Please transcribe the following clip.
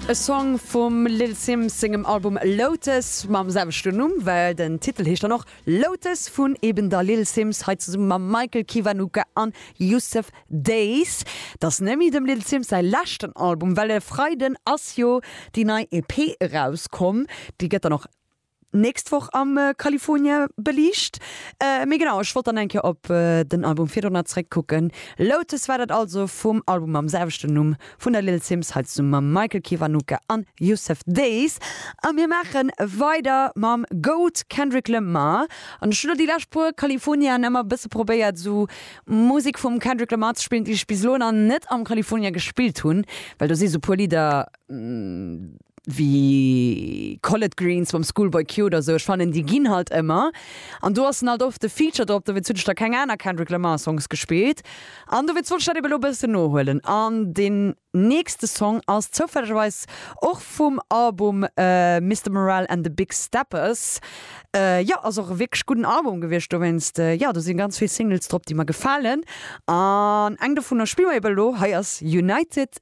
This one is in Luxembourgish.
E Song vum Lil Simz sengem Album Lotus mam selwechten Numm, well den Titel heescht dann och Lotus, vun eben der Lil Simz hei zesumme mam Michael Kiwanuka an Yussef Dayz. Dass Nemi dem Lil Simz säi leschten Album, well e Freiden ass jo déi nei EP erauskomm, déi gëtt dann och. nächst Woch am California beliicht. Mee genau, ech wollt dann eng Kéier op den Album virdrun nach zeréckkucken. Lotus war dat also vum Album mam selwechten Numm vun der Lil Simz, hei zesummen mam Michael Kiwanuka an Yussef Dayes. A mir maache weider mam Goat Kendrick Lamar. An ech hu lo déi lescht puer Californiaen ëmmer e bësse probéiert esou Musek vum Kendrick Lamar ze spillen, déi ech bis elo nach net am California gespillt hunn, well do si sou puer Lidder, wéi Collard Greens mam Schoolboy Q oder esou, ech fannen déi ginn halt ëmmer an do ass en halt oft de Feature drop, dowéinst hunn ech da keng aner Kendrick Lamar Songs gespillt an dowéinst wollt ech dat eben elo e bëssen nohuelen an deen nächste Song ass zoufällegerweis och vum Album Mister Morale and the Big Steppers, jo ass och e wierklech gudden Album gewiescht dowéinst jo do sinn ganz vill Singles drop déi mer gefalen an eng dovunner spille mer eben elo, hei ass United.